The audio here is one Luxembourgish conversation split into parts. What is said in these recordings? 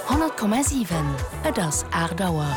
100,7 Et ass 8 Auer.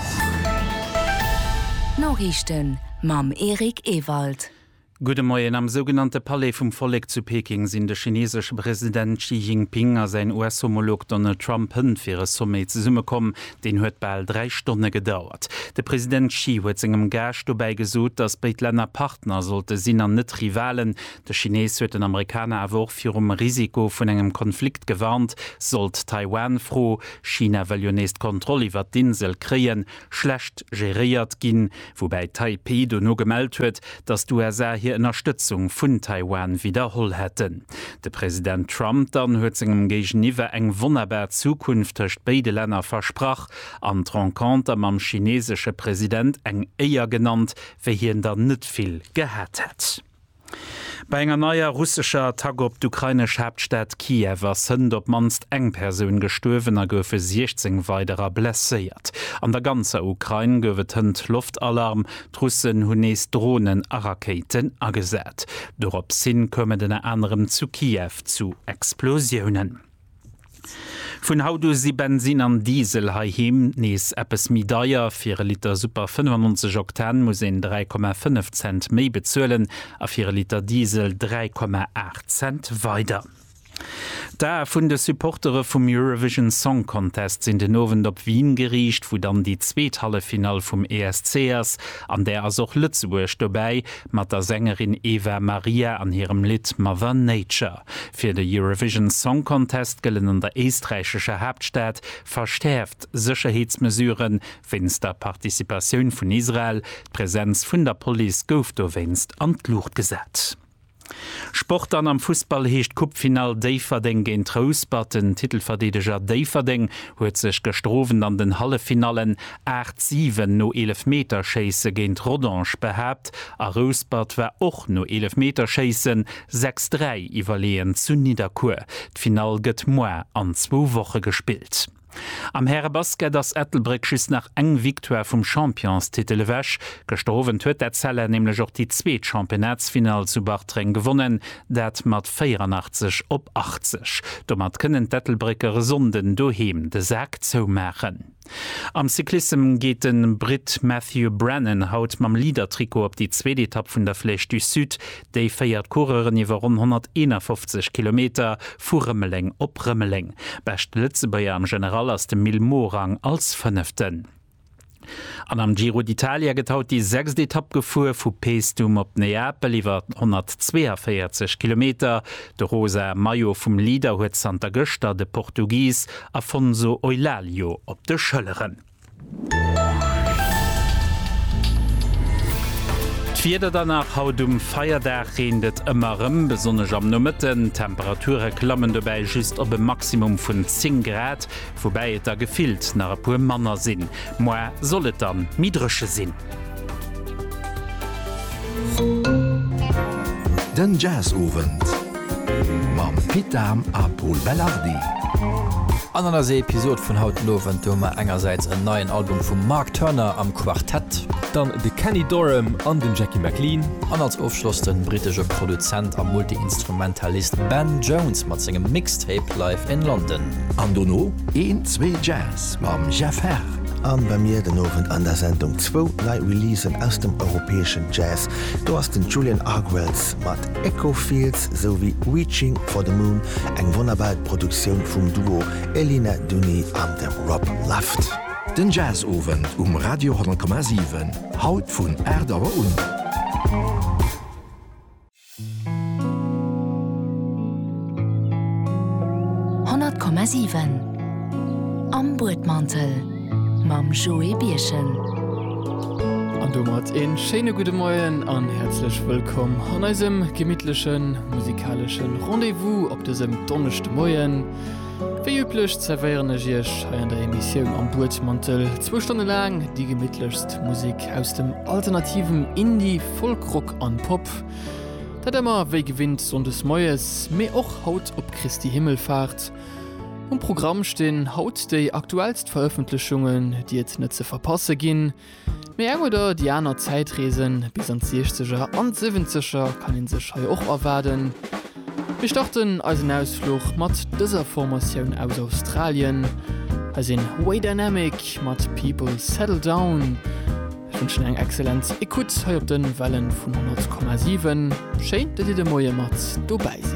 D'Noriichten mam Eric Ewald. Gudde Moien. Am sougenannte Palais vum Vollek zu Peking sinn de chineesesche President Xi Jinping a säin US-Homolog Donald Trump hënt fir e Sommet zesummekomm. Deen huet bal dräi Stonne gedauert. De President Xi huet sengem Gaascht dobäi gesot, datt béid Länner Partner sollte sinn an net Rivalen. De Chinees huet den Amerikaner awer och virum Risiko vun engem Konflikt gewarnt, sollt d'Taiwan-Fro, China wëll jo nees d'Kontroll iwwert d'Insel kréien, schlecht geréiert ginn. Woubäi Taipeh dono gemellt huet, datt d'USA hir Ënnerstëtzung vun Taiwan widderholl hätten. De President Trump dann huet sengem Géigeniwwer eng wonnerbar Zukunft tëscht béide Länner versprach an d'Renconter mam chineesesche President eng Éier genannt, wéi hien der net vill gehat hätt. Bei enger neier russescher Attack op d'ukrainesch Haaptstad Kiew ass Sënnt op d'mannst eng Persoun gestuerwen a goufe 16 weiderer blesséiert. An der ganzer Ukrain gouf et Hënt Loftalarm, d'Russen hunn nees Dronen a Rakéiten agesat. Doropshin koum et ënner anerem zu Kiew zu Explosiounen. Vun haut u si Bensin an Diesel heiheem nees eppes méi deier. Fir e Liter Super 95 Oktan muss een 3,5 Cent méi bezuelen a fir e Liter Diesel 3,8 Cent weider. D'Ae vun de Supportere vum Eurovision Song Contest sinn den Owend op Wien geriicht, wou dann déi zweet Halleffinall vum ESC ass. An där ass och Lëtzebuerg dobäi mat der Sängerin Eva Maria an hirem Lidd Mother Nature. Fir de Eurovision Song Contest gëllen an der éisträichescher Haaptstad verschäerft Sécherheetsmesuren, wéinst der Participatioun vun Israel. D'Presenz vun der Police gouf dowéinst an d'Luucht gesat. Sport An am Fussball heescht d'Coupe-Finall Déifferdeng géint Rouspert. Den Titelverdeedeger Déifferdeng huet sech gëschter Owend an den Halleffinallen 8, 7 no Eelefmeterschéisse géint Rodange behaapt a Rouspert war och no Eelefmeterschéissen Sechs dräi iwwerleeën zu Nidderkuer. D'Finall gëtt moar an zwou Woche gespillt. Am Härebasket ass Ettelbréck just nach eng Victoire vum Championstitel ewech. Gëschter Owend huet d'Etzella nämlech och déi zweet Championnatsfinall zu Bartreng gewonnen, dat mat 84 op 80. Domat kënnen d'Ettelbrécker e Sonnden doheem de Sak zoumaachen. Am Cyclissem geet de Britt Matthew Brennan haut mam Leader-Trikot op déi zweet Etapp vun der Flèche du Sud. Déi féiert Coureuren iwwer ronn 151 Kilometer vu Rëmeleng op Rëmeleng. Beschte Lëtzebuerger am General ass de Mil Morang als Fënneften. An am Giro d'Italia gëtt haut déi sechst Etapp gefuer, vu Paestum op Neapel iwwer 142 Kilometer. De rosa Maillot vum Leader huet zanter gëschter de Portugis Afonso Eulálio op de Schëlleren. D'Wieder dann nach, Haut um Feierdag reent et ëmmer erëm, besonnesch am Nomëtten. D'Temperature klammen dobäi just op e Maximum vun 10 Grad, woubäi et der gefillt nach e puer manner sinn. Moar soll et dann méi dréche sinn. Den Jazzowend mam Pit Dahm a Pol Belardi. An an eiser Episod vun haut den Owend hu mer engersäits en neien Album vum Mark Turner am Quartett. Dann de Kenny Dorham an den Jackie McLean. An als Ofschloss den brittesche Produzent a Multiinstrumentalist Ben Jones mat sengem Mixtape Live in London. An dono een, zwee Jazz. Mix mam Jeff Herr. An bei mir den Owend an der Sendung zwou nei Releasen aus dem europäeschen Jazz. Do ass den Julian Argwells mat Echo Fields sou wéi Reaching for the Moon, eng wonnerbar Produktioun vum Duo Elina Duni an dem Rob Luft. Den Jazzowend um Radio 10,7, haut vun 8 Auer un. Honnert Komma siwen Am Buedmantel mam Joé Birchen. An domat een schéine gudde Moien an häerzlech wëllkomm an eisem gemittlechen musikaleschen Rendez-vous op dësem Donneschdemoien. Wéi üblech zervéieren ech iech hei an der Emissioun Am Buedmantel zwou Stonne laang déi gemittlechst Musik aus dem alternativen Indie-Folk-Rock, an Pop. Dat emmer wéi gewinnt Sonndes Moies, mee och haut op Christi Himmelfahrt. Um Programm stinn haut déi aktuellst Veröffentlechungen, déi et net ze verpasse ginn. Mee eng oder déi aner Zäitreesen bis an d'Siechzeger an d'Siwwenzeger kann een sech hei och erwaarden. Mir starten eisen Ausfluch mat dëser Formatioun aus Australien. Hei sinn Way Dynamic mat People Settle Down. Ech wënschen eng excellent Ecoute hei op den Wellen vun 100,7. Schéin, dass dir de Moie mat dobäi sidd.